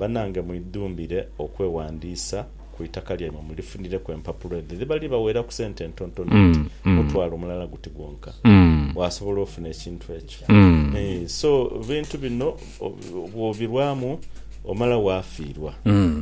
Banange mwidhumbire okwewandiisa ku itaka lyaimwe mulifunireku empapulo edho edhiba dhibaweeraku sente entontono oti mutwalo mulala guti gwonka waasobola ofuna ekintu ekyo. So ebintu bino bwobirwamu omala waafiirwa.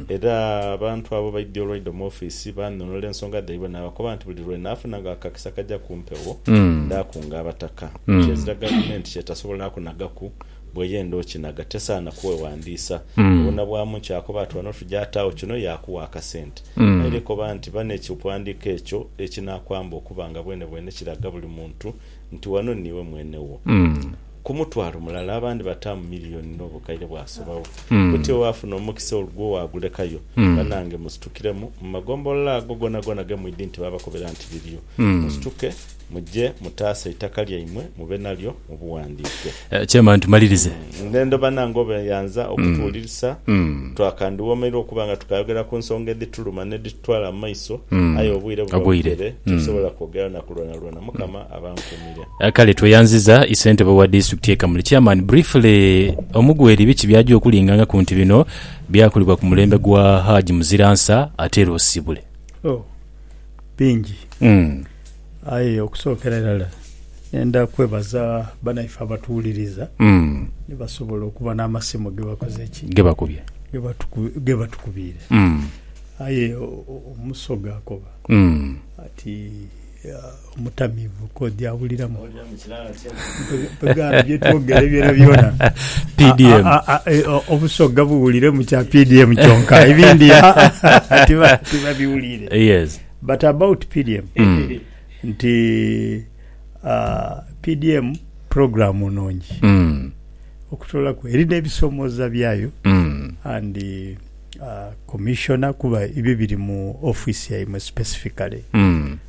Era abantu abo baidhie olwaidha mu ofiisi baanhonhola ensonga dhaibwe naabakoba nti buli lwe naafunanga akakisa akaja ku mpewo ndaakunga abataka, kyezira gavumenti ky'etasobola kunagaku. Bw'eyenda okinaga tesaana kweghandiisa. Obonabwamu nti akoba ati wano tuja ataagho kino yaakugha akasente. Aye era ekoba nti ba n'ekighandiiko ekyo ekinaakwamba okuba nga bwenebwene kiraga buli muntu nti wano niiwe mwene wo. Ku mutwalo mulala abandi bataamu miliyoni n'obukaire bwasobagho. Kutyo waafuna omukisa olugwo waagulekayo. Banange musitukiremu. Mu magombolola ago gonagona ge mwidhi nti baabakobera nti biriyo, musituke. Muje mutaase eitaka lyaimwe mube nalyo mu bughandiike. Chairman tumalirize. Ndhendo banange obeyanza okutuwulirisa twakandhiwomeirwa okuba nga tukayogera ku nsonga edhituluma n'edhitutwala mu maiso aye obwire buba bugere titusobola kwogera na ku lwonalwona. Mukama abankuumire. Kale tweyanziza Isentebe wa District ye Kamuli. Chairman briefly Omugweri biki byaja okulinga nga kunti bino byakolebwa ku mulembe gwa Hajj Muziransa atere osibule. bingi Mm. aye okusookera irala nenda kwebaza banaife abatuwuliriza Mm. ni basobola okuba n'amasimu ge bakoze ki Ge bakubye. ge batuku- ge batukubiire Mm. aye o- o- omusoga akoba Mm. ati ah, Omutamiivu k'oja awuliramu bye twogera byonabyona. PDM. Obusoga buwulire mu kya PDM kyonka, ebindi tibabiwulire. Yes. But about PDM, nti PDM program nungi okutolaku. Eri n'ebisomooza byayo and Commissioner kuba ebyo biri mu office yaimwe specifically.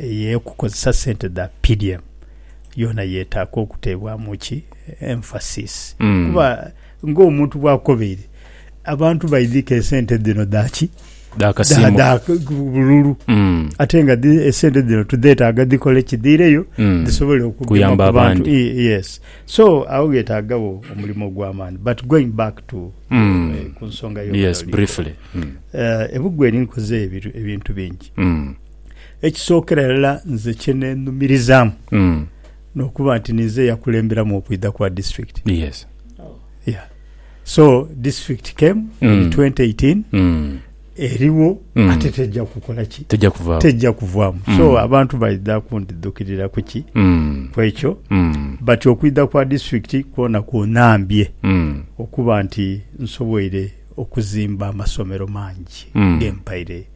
Ey'okukozesa sente dha PDM yoona yeetaaga okuteebwamu ki emphasis kuba ng'omuntu bw'akobeire, abantu baidhi ke esente dhino dha ki? Dha kasiimo. Dha bululu. Ate nga esente dhino tudheetaaga dhikole ki? Dhiireyo dhisobole okugema ku bantu. Yes. So, agho gheetaagagho omulimo ogw'amaani. But going back to ku nsonga yo. Yes, briefly. Ebugwe linkoze ebintu bingi. Ekisookera irala nze kye neenhumirizaamu Mm. n'okuba nti ninze eyakulemberamu okwidha kwa disitulikiti. Yes. Yeah. So disitulikiti came in Mm. 2018 Mm. eriwo Mm. ate tejja kukola ki? Tejja kuvaawo. Tejja kuvaamu. Mm. So abantu baidha kundidhukirira ku ki? Mm. Ku ekyo. Mm. But okwidha kwa disitulikiti kwona kunhambye Mm. okuba nti nsoboire okuzimba amasomero mangi Mm. ge mpaire